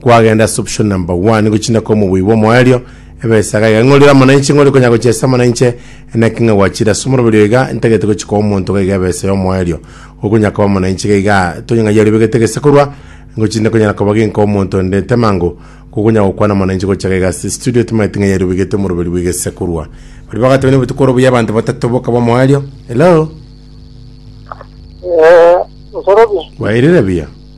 Kwagenda ase option number one gochina kwa omobui bwa omoerio, ebesaga iga ng'a orire amana inche, ng'a ore konya gochia ase amana inche, enaki ng'a gwachire ase omoroberi oyo iga, ntagete gochia koa omonto iga iga ebesa ya omoerio, okonya koba amana inche iga iga, tonya ng'a yaribegete gese korwa, ngochinde konyara koba ginkoa omonto onde temango, kogonya gokwana amana inche gochia iga iga ase studio timaeti ng'a yaribegete omoroberi bwe gese korwa. Baria bagateba na obotuko oro buya abanto batato bokaba omoerio. Hello? Eh, nsorobia. Wairire buya?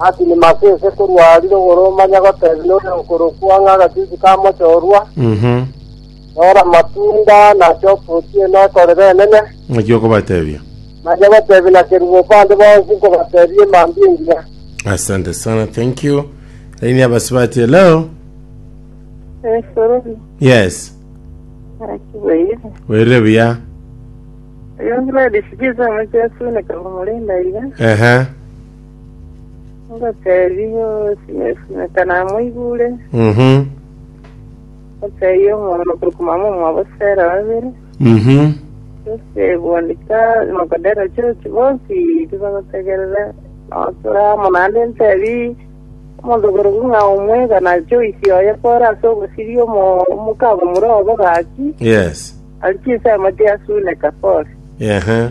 Asimasi ase korwa arire okoromanya gotebia oria okorokwa ng'a agachuchu ka mochorwa, Mhm. Tora amatunda na choka ochie nekorera enene, Naki okobatebia. naye gotebia na kerubo bande bonsi nkobatebia emambia engiya. Asante sana, thank you. Laini ya basibati, hello. Esoro Yes. akibaire Werire buya. yongera dishikiza amachesu nekamurinda iga Ehe. Ngoteebia osimeka namoigure, Mhm. ngoteebia omwana okorokwa mama omwabo Sera babere, Mhm. ase bwandika nokodera chochi bonsi tibagotegerera notura amo naende nteebie omonto okorokwa ng'a omwega na Joyce oye kore ase ogosiria omo- omokabo mure obo gaki, Yes. aria chinsemo chiasuneka kore. Ehe.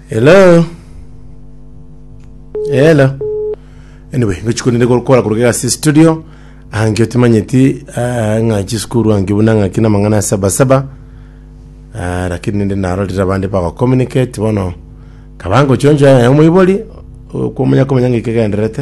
Hello. Hello. Anyway, ngochi kunende gokora kuruga ase studio. Ange timanyeti ah, ng'a chisukuru ange buna ng'a kina mang'ana ya saba saba. Ah, lakini nende narorire abande bago communicate bono. Kabango chonjo ya omoibori kumanya kumanya ng'ike genderete.